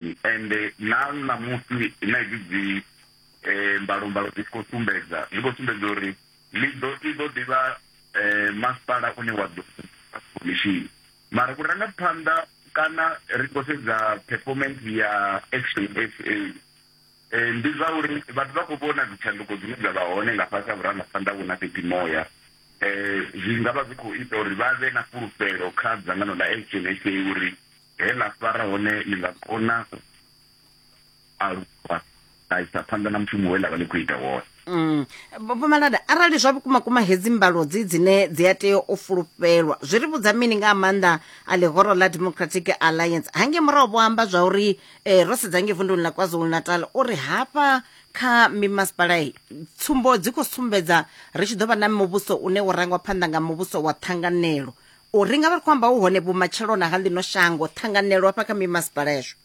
Ende na ṋamusi na hedzi dzi um mbalombalo dzi tshi khou sumbedza, zwi khou sumbedza uri Lido i ḓo ḓi vha um masipala une wa ḓo khomishini. Mara vhurangaphanḓa kana ri tshi khou sedza performance ya Action SA, um ndi zwa uri vhathu vha khou vhona dzitshanduko dzine dza vha hone nga fhasi ha vhurangaphanḓa vhu na fheṱimoya. Um zwi nga vha zwi khou ita uri vha vhe na fhulufhelo kha dzangano ḽa Action SA uri. He ḽa fara hone ḽi nga kona u aluwa ḽa isa phanḓa na mushumo we ḽa vha ḽi khou ita wone mm. Vho Malada, arali zwa vhukuma kuma hedzi mbalo dzi dzine dzi a tea u fulufhelwa zwi ri vhudza mini nga ha maanḓa a ḽihoro ḽa Democratic Alliance hangei murahu vho amba zwa uri eh, ro sedza ngei vunduni ḽa KwaZulu-Natal uri hafha kha mimasipala i tsumbo dzi khou sumbedza ri tshi ḓo vha na muvhuso une wo rangwa phanḓa nga muvhuso wa ṱhanganelo u ri nga vha ri khou amba hu hone vhumatshelona ha ḽino shango ṱhanganelo hafha kha mimasipala yashu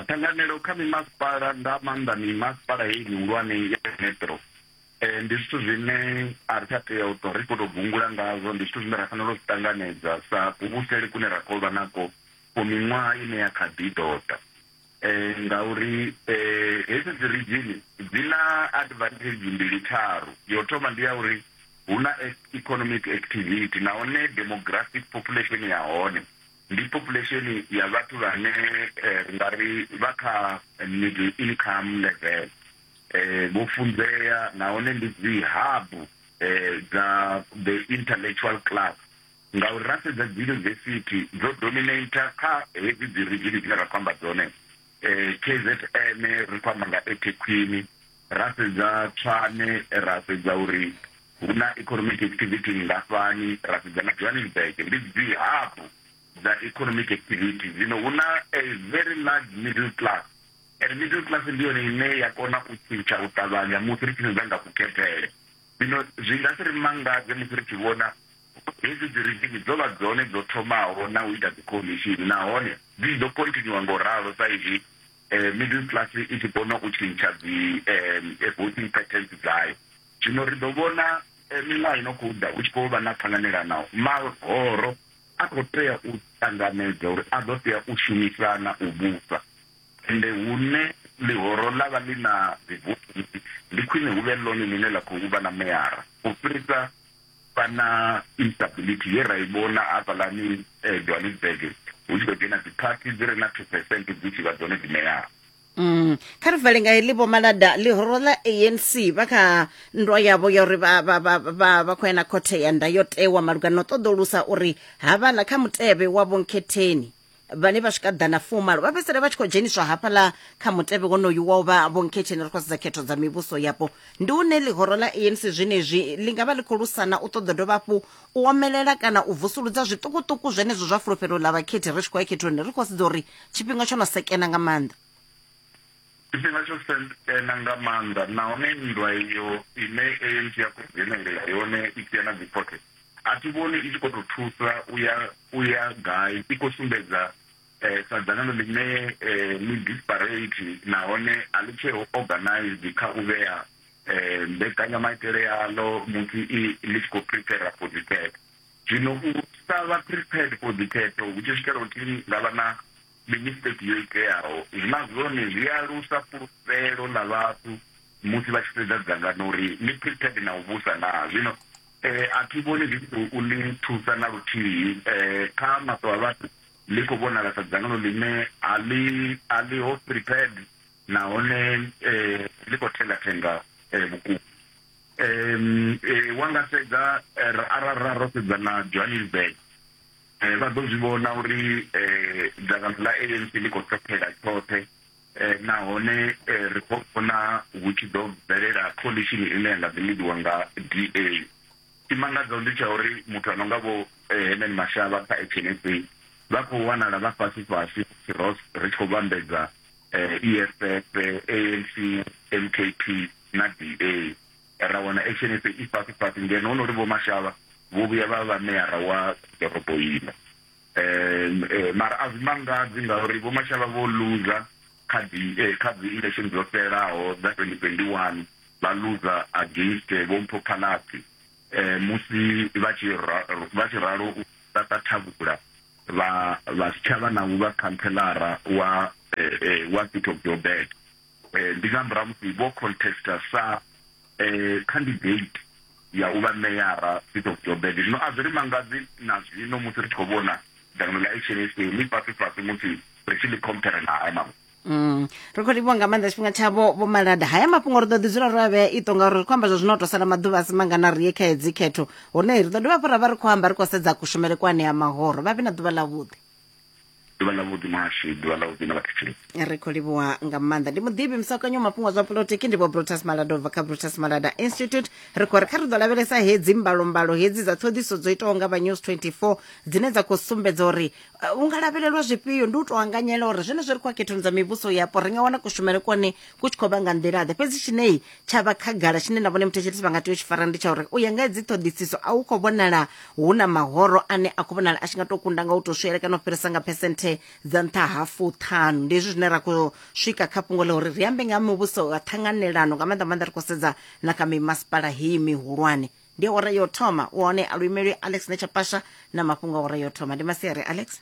ṱhanganelo kha mimasipala nga maanḓa mimasipala heyi mihulwane ya metro um ndi zwithu zwine a ri tsha tea u tou ri khou tou gungula ngazwo ndi zwithu zwine ra fanela u zwi ṱanganedza sa kuvhusele kune ra khou vha nako for miṅwaha ine ya kha ḓi ḓoḓa Ngauri hedzi dzi ridzhini dzi na advantage mbili tharu. Ya u thoma ndi ya uri hu na economic activity nahone demographic population ya hone ndi population ya vhathu vhane ri nga ri vha kha middle income level, vho funzea nahone ndi dzi hub dza the intellectual class Ngauri ra sedza dziyunivesithi dzo dominator kha hedzi dzi ridzhini dzine ra khou amba dzone, KZN ri khou amba nga eThekwini, ra sedza Tshwane ra sedza uri hu na economic activity nngafhani, ra sedza na Johannesburg ndi dzi hub dza economic activity. Zwino hu na a very large middle class and middle class ndi yone ine ya kona u tshintsha u ṱavhanya musi ri tshi sedza nga kukhethele. Zwino zwi nga si ri mangadze musi ri tshi vhona Hedzi dzi ridzhini dzo vha dzone dzo thomaho na u ita dzikhomishini nahone dzi ḓo khonthinyuwa nga u ralo sa izwi Middle Class i tshi kona u tshintsha dzi voting patterns dzayo. Zwino ri ḓo vhona miṅwaha i no khou ḓa hu tshi khou vha na ṱhanganelano. Mahoro a khou tea u ṱanganedza uri a ḓo tea u shumisana u vhusa, ende hune ḽihoro ḽa vha ḽi na dzivotisi, ndi khwine hu vhe ḽone ḽine ḽa khou vha na meyara u fhirisa Kana instability ye ra i vhona hafhaḽani Johannesburg hu tshi khou dzhena dziphathi dzi re na two percent dzi tshi vha dzone dzi ṋeaho Mm. kha ri vale nga heḽi vho malada ḽihoro ḽa anc vha kha nndwa yavho ya uri vha- vha- vha- vha- vha khou ya na khothe ya ndayotewa malugana na u ṱoḓulusa uri havhala kha mutevhe wa vhonkhetheni vhane vha swika ḓana fumalo vha fhedzisela vha tshi khou dzheniswa hafhaḽa kha mutevhe wonoyu wa u vha vhonkhetsheni ri khou sedza khetho dza mivhuso yapo ndi une ḽihoro ḽa anc zwenezwi ḽi nga vha ḽi khou lusana u ṱoḓa dovha hafhu u omelela kana u vusuludza zwiṱukuṱuku zwenezwo zwa fulufhelo ḽa vhakhethi ri tshi khou ya khethoni ri khou sedza uri tshifhinga tsho no sekena nga maanḓa Tshifhinga tsho sendena nga maanḓa nahone nndwa iyo ine ANC ya khou dzhenelela yone i tshi ya na dzikhothe, a thi vhoni i tshi khou tou thusa u ya u ya gai, i khou sumbedza sa dzangano ḽine ḽi disparate nahone a ḽi tsheho organised kha u vhea mbekanyamaitele yaḽo musi i ḽi tshi khou prepare for dzikhetho. Zwino u sa vha prepared for dzikhetho hu tshi swikela u thi nga vha na ndi mistake yo iteaho na zwone zwi alusa fhulufhelo ḽa vhathu musi vha tshi sedza dzangano uri ḽi prepared na u vhusa na zwino eh, a thi vhoni zwi tshi khou ḽi thusa na luthihi eh, kha maṱo a vhathu ḽi khou vhonala sa dzangano ḽine a ḽi a ḽi ho prepared nahone eh, ḽi khou thengathenga eh, vhukuma um wa nga sedza eh, arali ra ro sedza na johannesburg Vha ḓo zwi vhona uri dzangano ḽa ANC ḽi khou ṱhophela tshoṱhe nahone ri khou vhona hu tshi ḓo bvelela coalition ine ya nga ḓi lidiwa nga DA. Tshimangadzaho ndi tsha uri muthu a no nga vho Herman Mashaba kha Action SA vha khou wanala vha fhasi fhasi musi ro ri tshi khou vhambedza EFF, ANC, MKP na DA. ra wana action ife i fhasi fhasi ngeno honori vho mashavha vho vhuya vha vha meyara wa ḓorobo ino um mara a zwi mangadzi ngauri vho mashavha vho loser kha dzi eh, kha dzi election dzo fhelaho dza 2021 vha loser against eh, vho mpho phalaphi eh, musi vha tshi ra- vha tshi ralo u tata thavhula vha vha si tshavha na u vha khanthelara wa eh, eh, wa city of joburg Eh, ndi nga murahu musi vho contesta sa eh, candidate ya u vha meyara seat of joburg zwino a zwi ri mangadzi na zwino musi ri tshi khou vhona dzangano ḽa hnsa ḽi fhasi fhasi musi ri tshi ḽi compare na haya mafhungo Mm. ri khou livhuwa nga maanḓa tshifhinga tshavho vho malada haya mafhungo ri ḓo ḓi dzula ro a vhea ito ngauri ri khou amba zwa zwino to sala maḓuvha a si mangana ri ye kha hedzi khetho hone ri ḓo dovha hafhu ra vha ri khou amba ri khou sedza kushumele kwa anea mahoro vha vhe na ḓuvha ḽavhuḓi ḓuvha ḽa vhuḓi muhashi ḓuvha ḽa vhuḓi na vhathetshelesi ri khou livhuwa nga maanḓa ndi muḓivhi musakanyo mafhungo zwa polotiki ndi vho brutus malada ubva kha brutus malada institute ri khou ri kha ri ḓo lavhelesa hedzi mbalombalo hedzi dza ṱhoḓiso dzo itaho nga vha news 24 dzine dza khou sumbedza uri uh, u nga lavhelelwa zwifhio ndi u tou anganyela uri zwenezwo ri khou a khethoni dza mivhuso yapo ri nga wana kushumele kone ku tshi khou vha nga nḓilaḓe fhedzi tshinei tsha vha khagala tshine na vhone muthetshelesi vha nga tea u tshi fara ndi tsha uri u ya nga dzi ṱhoḓisiso a hu khou vhonala hu na mahoro ane a khou vhonala a tshi nga tou kunda nga u tou swele kana u fhirisa nga phesenthe dza nṱha ha fuṱhanu ndi hezwi zwine ra khou swika kha fhungo ḽa uri ri ambe nga muvhuso wa ṱhanganelano nga maanḓa maanḓa ri khou sedza na kha mimasipala heyi mihulwane ndi awara yo thoma u hone a luimelwi alex netshapasha na mafhungo awara yo thoma ndi masiari alex